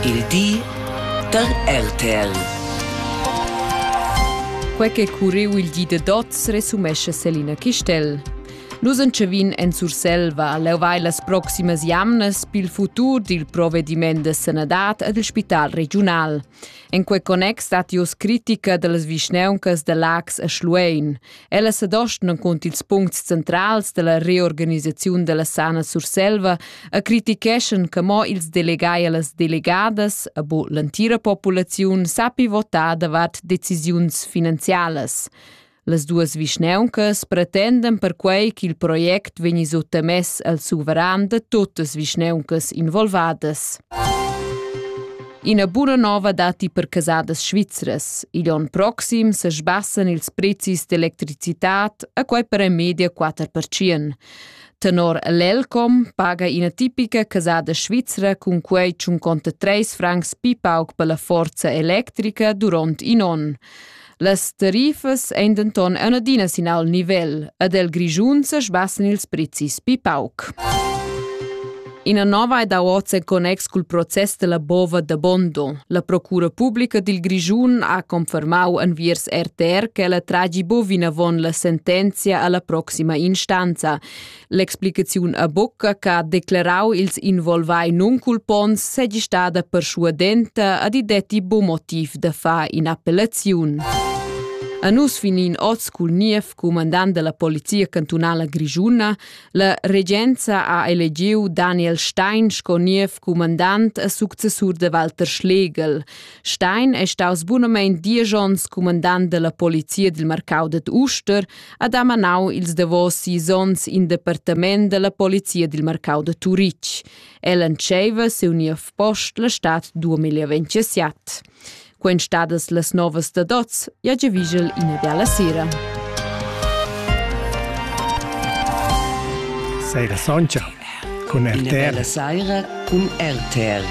Il di da RTL. Quei che curriu il di da dots resumescha Selina Chistel. Nus entschevin en Surselva. Leu vai las proximas jamnas pil futur dil provediment de sanadad ed il spital regiunal. En quei connex stat ius critica dallas vischneuncas de Lax e Schluein. Ella sedostan cunter ils puncts centrals della reorganisaziun della Sana Surselva e criticheschan che mo ils delegai e las delegadas, e bo l'entira populaziun, sappi votar davart decisiuns finanzialas. Las duas vischneuncas pretenden perquei ch'il project vegni suttamess al suveran de totas vischneuncas involvadas. Ina buna nova datti per casadas svizras. Igl onn proxim se sbassan ils prezis d'electricitad a quai per en media 4%. Tenor l'Elcom paga ina tipica casada svizra cun quei tschun conta 3 francs pi pauc per la forza electrica durant in onn. Las tarifas ein denton ein adina sin al nivel ed el Grischun sesbassen ils prezis pi pauc. Ina nova ed oz en connex cul process della bova da Bondo. La Procura Publica dil Grischun ha confermau enviers RTR che la tragi bovina von la sentenzia alla proxima instanza. L'explicaziun a bucca che ha declarau ils involvai nunculponts segi stada perschuadenta ad i detti buc motiv da far in'appellaziun. A nus finin oz cul niev cumandant della polizia cantunala grigiuna, la regenza ha elegiu Daniel Stein sco niev cumandant a successur de Walter Schlegel. Stein è staus bunamein dies onns cumandant della polizia dil marcau ded Uster ha damanau ils davos sis onns in departament dalla polizia dil marcau da Turitg. El entscheiva siu niev post la stad 2027. Quen stadas las novas da dots, ja già vigel ina bella sera. Seira Soncha. Cun RTR. Una bella saira cun RTR.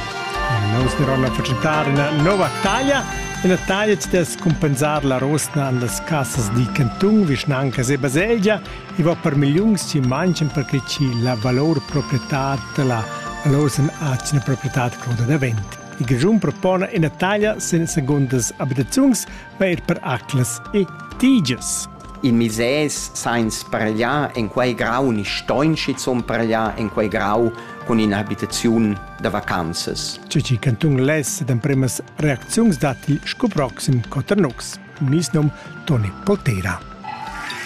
Nous diran la presentar una nova taglia. Una taglia ci des compensar la rosna an las casas di Cantung, vicinanca e baselgia e va per milions ci manchen perché ci la valor proprietà la valor sen acina proprietà cruda davent. Il Grigiun propone una taglia sen segundas abitaziuns per per aclas e tigias. In misès sainz pargliar en quei grau ni stoin schizun pargliar en quei grau cun in'abitaziun da vacanzas. Cici cantun less d'empremas reacziuns datti sco proxim Coternux. Mis num Toni Poltera.